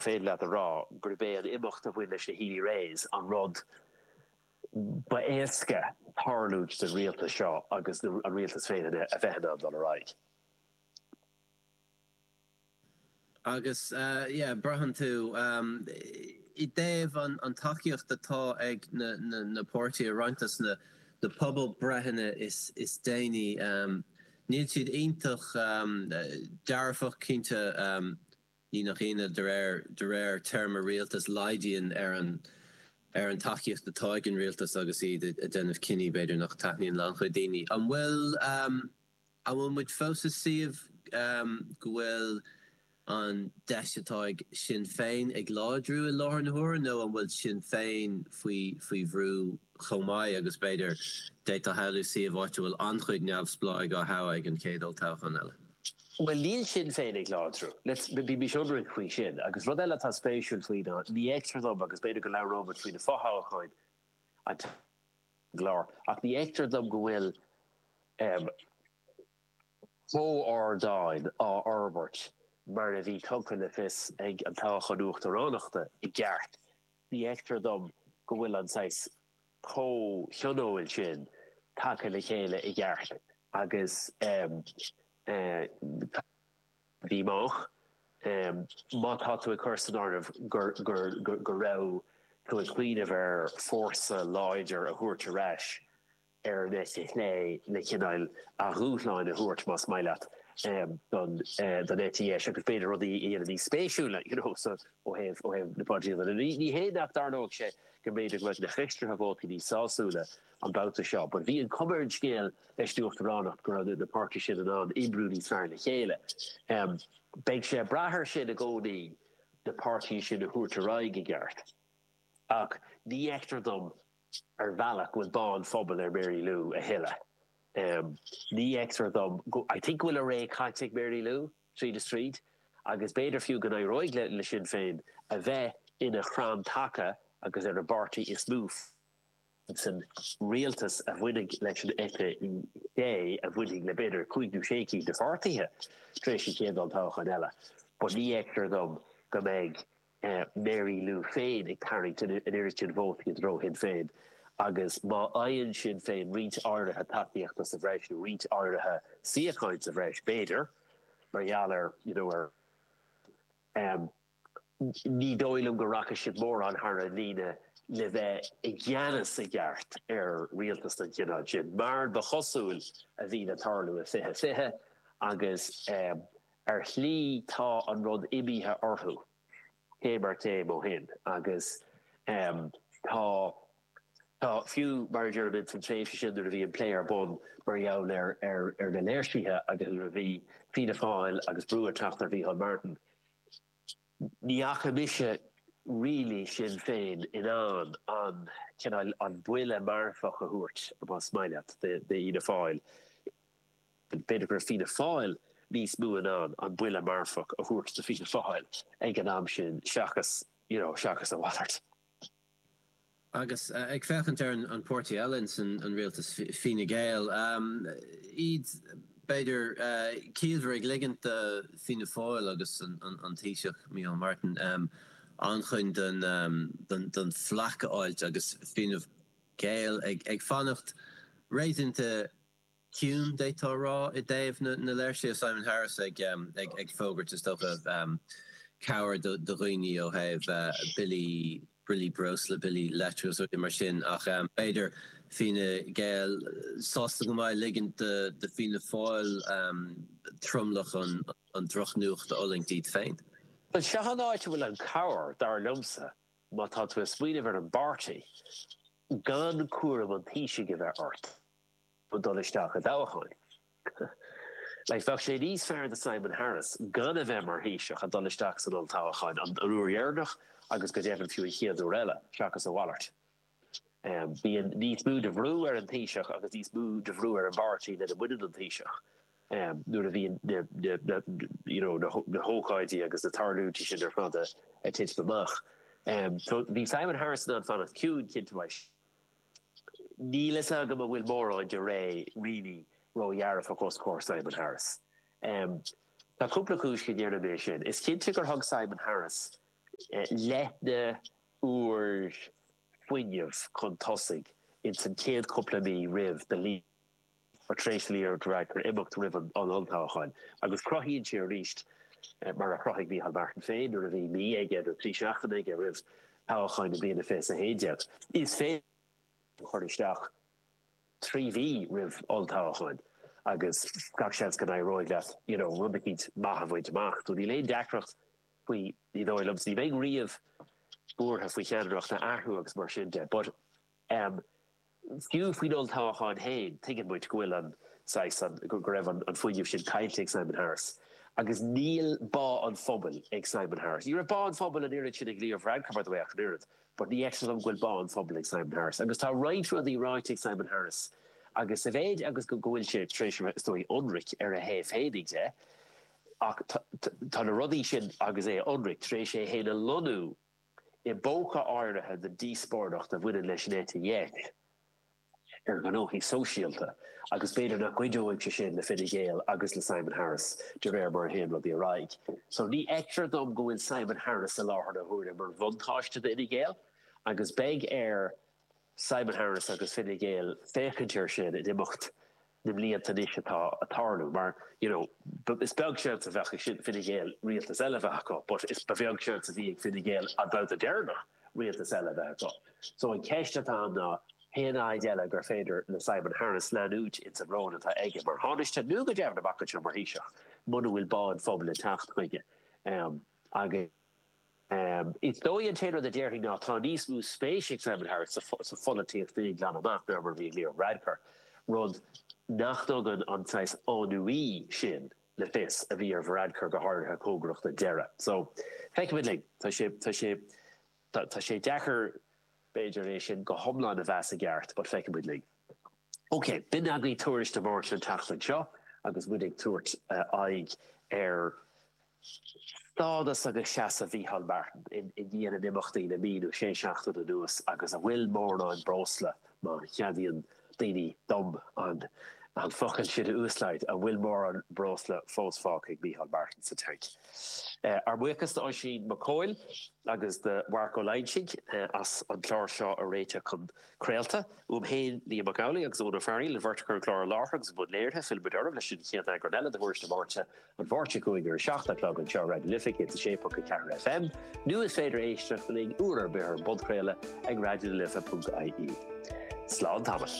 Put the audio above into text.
féidir leat a rá gurb é an imeacht a bhain leis na Healy-Raes an rud ab fhearr a tharla don rialtas seo agus an rialtas féin a bheith in ann dul ar aghaidh. Agus yeah braitheann tú i dtaobh an tacaíocht atá ag na páirtithe, roinnt as na pobalbhreitheanna is déanaí níl siad iontach dearfach cinnte. Ní nach ionadh, de réir de réir téarma rialtais, laghdaíonn ar an ar an tacaíocht atá ag an rialtas agus iad ag déanamh cinní, b'fhéidir, nach dtaitníonn le an-chuid daoine. An bhfuil an bhfuil muid fós i suíomh go bhfuil an deis atá ag Sinn Féin ag láidriú i láthair na huaire nó an bhfuil Sinn Féin faoi faoi bhrú chomh maith agus b'fhéidir d'fhéadfá a shamhlú suíomh áit a bhfuil an-chuid neamhspleáigh á thoghadh ag an chéad olltoghchán eile? Bhuel níl Sinn Féin ag láidriú. Let's, bímis ionraic faoi sin. Agus rud eile atá spéisiúil faoi ná, ní fheictear dom, agus b'fhéidir go labhróimid faoi na fothoghcháin anonn sa gclár, ach ní fheictear dom go bhfuil comhardán á fhorbairt mar a bhí tugtha le fios ag an toghchán uachtaránachta i gceart. Ní fheictear dom go bhfuil an saghas comhthionóil sin tagtha le chéile i gceart agus táthar amach má tá tú ag cur san áireamh go raibh tú ag cuimhneamh ar fórsa láidir a thabhairt ar ais ar an eite chlé le cineál dúshláin a thabhairt más maith leat don eite dheis agus b'fhéidir rudaí a dhéanamh níos spéisiúla you know ó thaobh na polaitíochta. Ní hé nach dtarlóidh sé agus b'fhéidir go mbeidh na haistrithe vótaí níos sásúla an babhta seo but bhí an chuma ar an scéal leis an uachtaránacht go raibh na páirtithe sin in ann oibriú níos fearr le chéile. Beidh sé ag brath air sin i gcónaí na páirtithe sin a thabhairt ar aghaidh i gceart ach ní fheictear dom ar bhealach go bhfuil bá an phobail ag Mary Lou a thuilleadh. Ní fheictear dom, I think go bhfuil a ré caite ag Mary Lou. tríd is tríd agus b'fhéidir fiú go n-éireoidh le Sinn Féin a bheith ina chrann taca agus ar an bpáirtí is mó san rialtas a bhainfidh leis an eite chlé a bhainfidh le b'fhéidir cúig nó sé cinn de pháirtithe tar éis an chéad olltoghcháin eile but ní fheictear dom go mbeidh Mary Lou féin ag tarraingt an oiread sin vótaí i dtreo Shinn Féin agus má fhaigheann Sinn Féin roinnt áirithe tacaíochta sa bhreis nó roinnt áirithe suíocháin sa bhreis b'fhéidir mar gheall ar you know ar ní dóigh liom go rachaidh siad mórán thar an líne le bheith i gceannas i gceart ar rialtas den chineál sin mar ba chosúil a bhí le tarlú i fiche fiche agus Ar shlí tá an rud imithe orthu céim ar chéim ó shin agus tá, tá fiú mar a déarfaimid san tréimhse sin nuair a bhí an plé ar bun mar gheall ar ar na léirsithe agus nuair a bhí Fianna Fáil agus brú ag teacht ar Mhicheál Martin ní fhaca mise really Sinn Féin in ann an cineál an buille marfach a thabhairt más maith leat do Fhianna Fáil. B'fhéidir go raibh Fianna Fáil níos mó in ann an buille marfach a thabhairt do Fianna Fáil ag an am sin seachas, you know, seachas a mhalairt. Agus ag féachaint ar an páirtí eile ins an rialtas, Fine Gael, iad b'fhéidir ciallmhar ag ligint do Fianna Fáil agus an Taoiseach, Micheál Martin, an-chuid don, don flak a fháilt agus Fine Gael ag fanacht réasúnta ciúin. D'fhéadfá a rá i dtaobh na léirsithe Simon Harris ag, ag fógairt, is dócha, cabhair do dhaoine ó thaobh billí, billí breosla, billí leictreachais, rudaí mar sin ach b'fhéidir Fine Gael sásta go maith a ligint do Fianna Fáil tromlach an drochnuachta a fhulaingt iad féin. Bhuel, seo an áit a bhfuil an cabhair, dar liomsa, má tá tú ag smaoineamh ar an bpáirtí gan cúram an Taoisigh a bheith ort. ag dul isteach i dtoghchán. Bheadh sé níos fearr do Simon Harris gan a bheith mar Thaoiseach, a dhul isteach san olltoghchán an uair dheireanach agus go deimhin fiú an chéad uair eile, seachas a mhalairt. Bíonn níos mó de bhrú ar an Taoiseach agus níos mó de bhrú ar an bpáirtí lena mbaineann an Taoiseach nuair a bhíonn na hócáidí agus na tarlúintí sin ar fad ag titim amach. So bhí Simon Harris in ann fanacht ciúin, cinnte, mar. Níl fhios agam an bhfuil mórán de ré, really, ró dhearfach os comhair Simon Harris. Tá cúpla cúis go ndéarfainn sin. Is cinnte gur thug Simon Harris léithne úr fuinnimh chun tosaigh ins an chéad cúpla mí roimh do Tar éis Leo Varadkar imeacht roimh an olltoghchán agus cruthaíonn sé arís, mar a chruthaigh Micheál Martin féin nuair a bhí mí aige nó trí seachtaine aige roimh thoghchán na bliana 2011, is féidir é a chur isteach trí mhí roimh olltoghchán agus gach seans go n-éireoidh leat you know rud eicínt maith a bhaint amach. So níl aon deacracht faoi, ní dóigh liom. So ní bheinn riamh buartha faoi cheannaireacht a athrú agus mar sin de. But. Em. Fiú faoin olltoghachán féin, tuigeann muid go bhfuil an, saghas, an, go raibh an fuinneamh sin caillte ag Simon Harris. Agus níl bá an phobail ag Simon Harris. Ní raibh bá an phobail an oiread sin ag Leo Varadkar, by the way, ach an oiread. But ní fheictear dom go bhfuil bá an phobail ag Simon Harris. Agus tá roinnt rudaí ráite ag Simon Harris agus sa mhéid agus go bhfuil sé tar éis a bheith, is dóigh, ionraic ar a thaobh féinig de, atá na rudaí sin agus é ionraic, tar éis é féin a lonnú i bpóca áirithe den díospóireacht a bhaineann leis an eite dheis ar ghnóthaí sóisialta agus b'fhéidir nach gcuideoidh sé sin le Fine Gael agus le Simon Harris de réir mar a théann rudaí ar aghaidh. So ní fheictear dom go bhfuil Simon Harris faoi láthair na huaire mar bhuntáiste d'Fhine Gael agus beidh air Simon Harris agus Fine Gael féachaint air sin in imeacht na mblianta anois atá ag tarlú mar you know is beag seans a bheadh ag Fine Gael rialtas eile a bheith acu but is ba bheag seans a bhí ag Fine Gael an babhta deireanach rialtas eile a bheith acu so an ceist atá ann ná cén fhaid eile gur féidir le Simon Harris leanúint ins an ról atá aige mar Thánaiste nó go deimhin amach anseo mar Thaoiseach muna bhfuil bá an phobail ag teacht chuige agus. Is dóigh an t-aon rud a déarfainn ná tá níos mó spéis ag Simon Harris sa pholaitíocht féin glan amach ná mar a bhí ag Leo Varadkar, rud nach dtugann an saghas ennui sin le fios a bhí ar Varadkar go háirithe cóngarach don deireadh. So, feicfidh muid linn. Tá sé, tá sé, tá sé deacair b'fhéidir é sin go hiomlán a mheas i gceart but feicfidh muid linn. Ok, b'in againn Tuairisc na Máirt an tseachtain seo agus muid ag tabhairt aghaidh ar. Stádas agus seasamh Mhicheál Martin i ndiaidh na n-imeachtaí le mí nó sé seachtaine anuas agus an bhfuil mórán breosla, má cheadaíonn daoine dom an focal sin, a úsáid, an bhfuil mórán breosla fós fágtha ag Micheál Martin sa tanc? Ár mbuíochas d'Oisín Mac Cóil agus do Mharc Ó Loingsigh as an clár seo a réiteach chun. Craolta, uaim féin, Liam Mac Amhlaigh agus Eoin Ó Fearghaíl, an bheirt a chur an clár i láthair agus i mbun léirithe, fillfidh muid oraibh leis an chéad eagrán eile de Thuairisc na Máirte, an Mháirt seo chugainn ar a 7 a' chlog anseo ar Raidió na Life 106.4 FM, nó is féidir éisteacht linn uair ar bith ar an bpodchraoladh ag raidionalife.ie. Slán tamall.